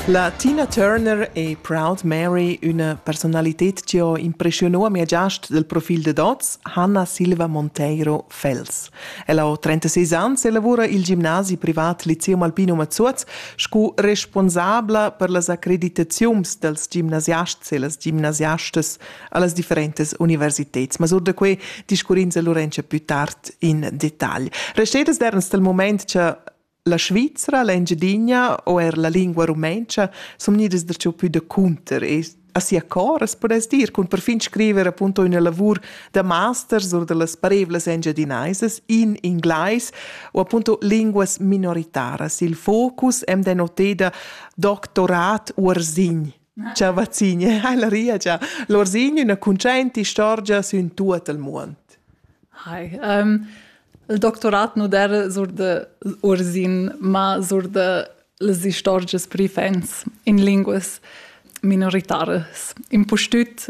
La Tina Turner e Proud Mary, üna personalited chi ho impreschiunà a mia giast dal profil dad hoz, Hanna Silva Monteiro Fels. Ella ho 36 ans e lavura i'l gimnasi privat Lyceum Alpino Mazuoz scu responsabla per las accreditaziuns dals gimnasiasts e las gimnasiastas a las differentas universiteds. Ma sur da que discurrins a Lorenza plü tard in detagl. Restedas d'Ernst dal mumaint cha La Svizra, l'Engiadina o er la lingua rumentscha sun gnidas darcheu pü da cunter e a sia coras pudess dir cun perfin scriver appunto üna lavur da masters or da las parevlas engiadinaisas in inglais o appunto linguas minoritaras. Il focus am dà noteda doctorat uorzin Ciao Vazzigne, hai la ria già. L'Orsigno una concente istorgia sün tuot il muond. Hi. Um, il doctorat nu der sur de Ursin, ma sur de les istorgias pri fans in linguas minoritaras. Impustüt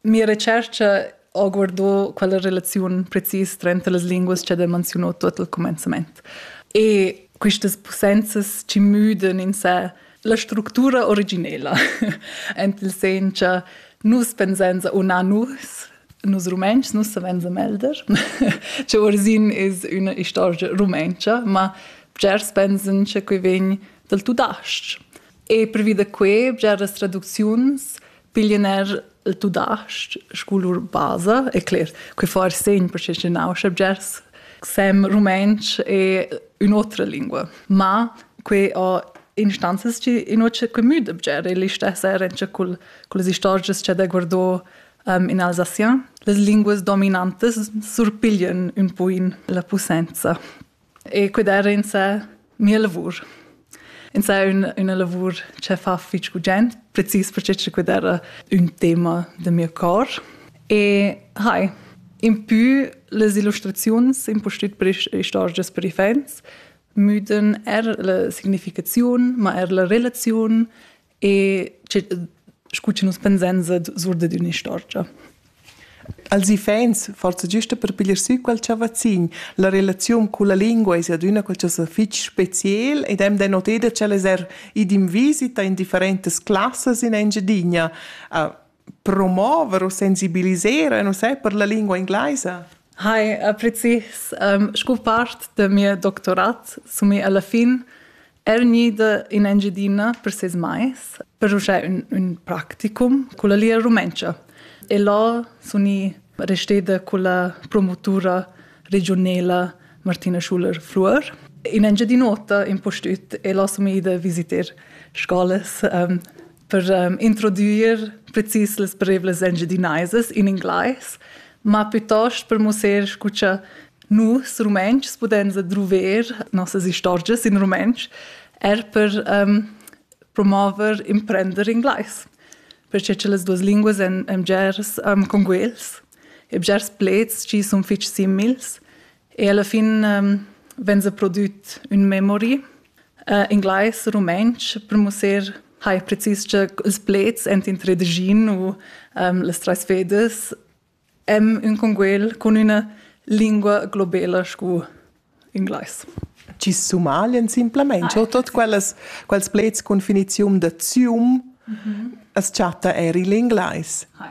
Mia retscherca ho guardò quella relaziun precis tranter las linguas cha del manziunò tuot al comenzament. E quistas pussenzas ci müdan in sé la structura originela, ent il sen cha nus pensenza o na nus, nus Rumentschs, nus savenza melder, che orzin es üna istorgia rumentscha, ma bgers pensan che que vegn dal tudasc. E pervi da que, bgeras traducziuns pigliener il tudasc sco lur basa e cler que far segn per che nau subjects sem rumantsch e un'otra lingua ma que ho instanzas chi inoce que müd obger e lista serencha col col las istorgias cha da guardò um, in Alsacien las linguas dominantas surpiglian un po in la posenza E quedar insa mia lavur. Insa ün, üna lavur che fa fich gugent, precis perche che quedar era ün tema da mio cor. E hai, impü las illustraziuns, impustüt per istorgias per iffaints, müdan er la significaziun, ma er la relaziun e scu che nus pensan sur dad ün'istorgia. Als iffaints, forsa giusta per piglier sü quel chavazzin, la relaziun culla lingua es adüna qualchosa fich speciel ed hem denotedo ch'el es er id in visita in differentas classas in Engiadina. promover u sensibilisar e nus per la lingua inglaisa? Hi, äh, precis. Um, sco part del mio doctorat sumi alla fin er gnida in Engiadina per ses mais per uschè un, un practicum con la lingua rumentscha. E là suni resteda con la promotura regionela Martina Schuler-Fluor. In Engiadinota in postüt e là sumi ida visiter scolas um, per um, introdüir precis las parevlas engiadinaisas in inglais, ma piuttost per mussar scu cha nus rumentschs pudens adruver nossas istorgias in rumentsch, er per um, promover imprender inglais, perché che las duas linguas èn, èn bgers um, conguels e bgers pleds chi sun fich simils E alla fin um, vegn se prodüt ün memory, uh, inglais, rumantsch, per mussar hai precis che ils plets ent in tredgin u um, les treis fedes em ün conguel con üna lingua globela scu inglais. Ci sumaglien simplemente ah, tot quellas quels plets cun finizium da zium mm -hmm. as chatta eir il inglais. Hi.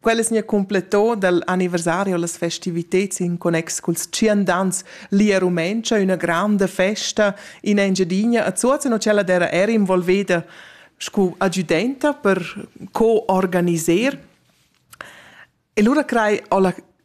Quellas nia completo dal anniversario las festiviteds in connex culs tschiendans lia rumentscha üna granda festa in Engiadina a Zuoz no cella d'era era involveda scu adjudenta per co-organiser. E lura crei ho la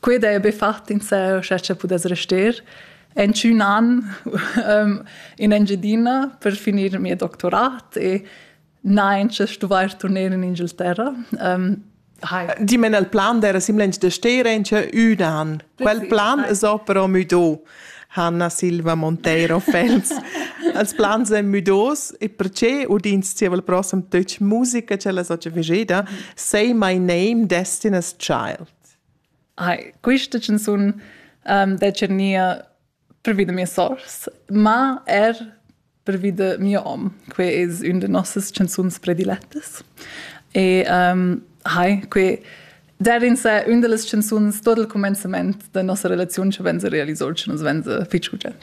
Quei dei be fat in seo, scha cha pudess rester. En tschun an um, in Engiadina per finir il mio doctorat e nein, che stuvair turner in Ingilterra. Um, Hi. Die men el plan der simlench de Steren che un an. Quel plan es però müdo. Hanna Silva Monteiro Phelps. Els plans èn müdos e perché udins ti il prossem töch musica ce la socia vigeda Say My Name Destiny's Child. Hai, quista chanzun um, decha gnir pervi da mias sours, ma er pervi da mio hom. Que es ün da nossas chanzuns predilettas. E um, hai, que der in se ün da las chanzuns tot il cumenzament da nossa relaziun cha venza realiso, cha nus venza fich gugent.